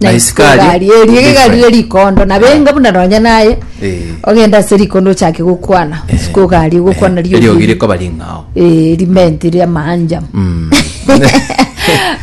Na Nice isiko car. egari erio Different. gegarire rikondo nabenga buna nonya naye Eh. ogenda ase rikondo ochake gokwana isiko egari gokwana rio eriogi ri- rikoba ring'ao Eh, rimenti ria maanja Mm.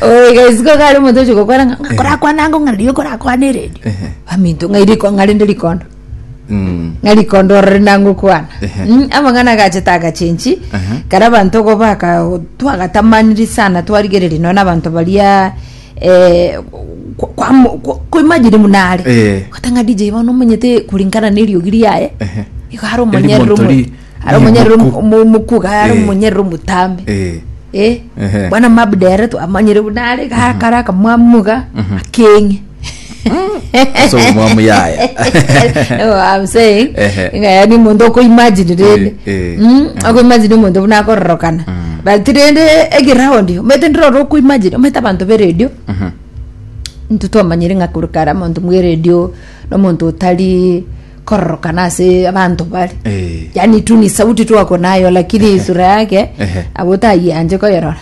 oiga isiko egari omonto oche gokwana ng'a- ng'a korakwana ango ng'a riria korakwana eredio Ehe. aminto ng'a iriko ng'a rinde rikondo Mm. ng'a rikondo orore nango kwana Ehe. Mm, amang'ana agache tagachenchi Ehe. kara abanto ogo baka twagatamaniri sana twarigereria nonya na abanto baria eh, kwa- kwa- kwa- koimagine buna are Eh. kata ng'a dj bono omonyete kuringana na eriogi riaye Ehe. igo are omonyerere Erimonto omo- ri- are omonyerere rimuku. omo- omokuga are Eh. omonyerere omotambe Eh. Eh, Ehe. bwana mabdere twamanyire buna are gakara akamwamuga akeng'e Ase obomwamu yaya. No, I'm saying, Ehe. ng'a yaani omonto okoimagine rende Eh, eh. Mm, akoimagine omonto buna akororokana but rende egeroundi omanyete ndire ore okoimagine omanyete abanto b'eredio intwe twamanyire ng'a korwa kare omonto bw'eredio nomonto otari kororokana ase abanto bare Eh. yaani tu ni sauti tu ako nayo lakini sura yake Ehe. abo otayianche koyerora